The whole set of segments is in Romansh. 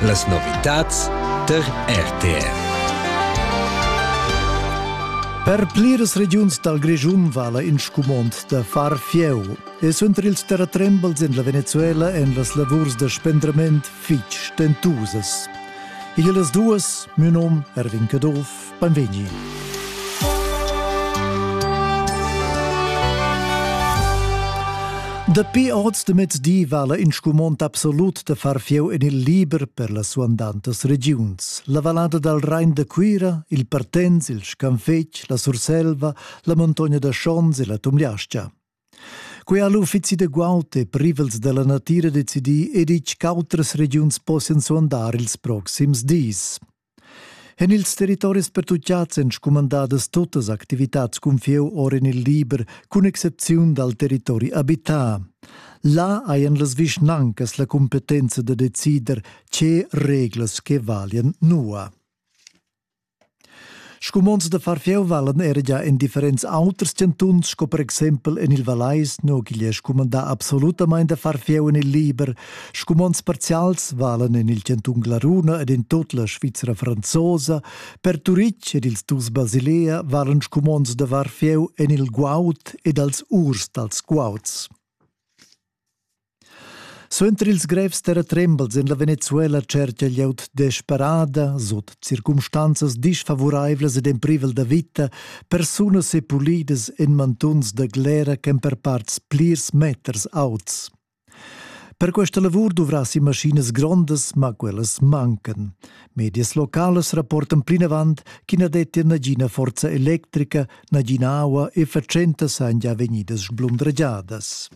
Las novitads tar RTR. Per pliras regiuns dal Grischun vala in scumond da far fieu e suenter ils terratrembels en la Venezuela èn las lavurs da spendrament fitg stentusas. Igl las duas, mio nom Erwin Caduff Benvegni. Dapi oz de mezdi vala in scumond absolut de far fieu en il liber per las suandantas regiuns. La vallada dal Rhein de Cuira, il Partens, il Scanfetg, la Surselva, la montogna da Schons e la Tumliascia. Quei ha l'uffizi de guaut e privels della natira decidì e ditg ch'autras regiuns possian suandar ils proxims dis. En ils territoris pertutgads èn scumandadas tuttas activitads cun fieu or en il liber, cun excepziun dal territori abità. Là hajan las vischnancas la cumpetenza da decider tge reglas che valian nua. Scumonds da far fieu valan era già en differents auters chantuns, sco per exempel en il Vallais, no, che è scumandà absolutamain da far fieu en il liber, Scumonds parzials valan en il chantun Glaruna ed en tut la Svizra franzosa. Per Turitg ed ils dus Basilea valan scumonds da varfieu en il guaud ed als urs dals guauds. Suenter ils grevs terratrembels en la Venezuela cerca glieud desperada, sut circumstanzas disfavuraivlas ed en privel da vita, persunas e pulidas en mantuns da glera ch'èn per parts plirs meters auts. Per questa lavur duvrassi maschinas grondas, ma quellas mancan. Medias localas rapportan plinavant ch'i na dettia nagina forza electrica, nagina aua e fatschentas han già vegnidas sblundragiadas.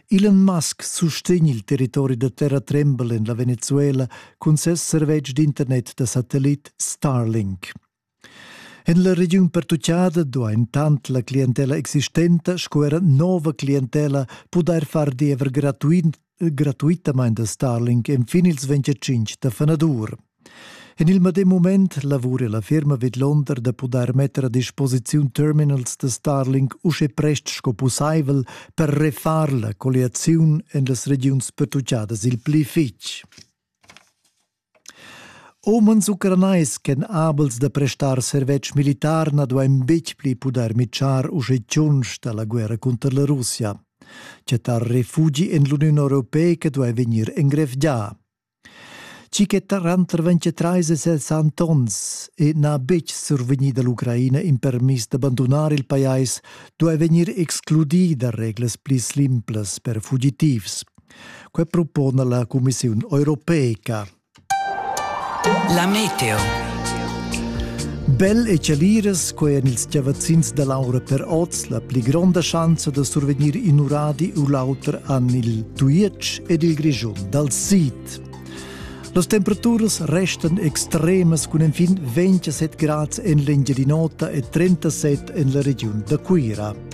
Elon Musk sustegn il territori da terra trembel en la Venezuela cun ses servetsch d'internet da satellit Starlink. En la regiun pertuccada duain tant la clientella existenta sco era nova clientella pudair far diever gratuit, gratuitamain da Starlink enfin ils 25 da fanadur. En il medem mument lavura la firma vidlonder da pudair metter a disposiziun terminals da Starlink usche prest sco pussaivel per refar la colliaziun en las regiuns pertuccadas il pli fitg. Umens ucranais ch'èn abels da prestar servetsch militar na duain betg pli pudair mitschar uschè tschunsch da la guerra cunter la Russia. Chattar refugi en l'Uniun europeica duai vegnir engrevgià. Tgi che tranter 23 e 60 onns e n'ha betg survegnì da l'Ucraina in permis da bandunar il pajais duai vegnir excludì da reglas pli simplas per fugitivs. Quei propona la Commissiun europeica. La meteo. Bel e celiras, quei en ils chavazzins da l'aura per oz, la pli gronda schanza da survegnir in uradi u l'auter an il Tujetsch ed il Grischun dal sid. Las temperaturas restan extremas cun enfin 27 grads en l'Engiadin'Ota e 37 en la regiun da Cuira.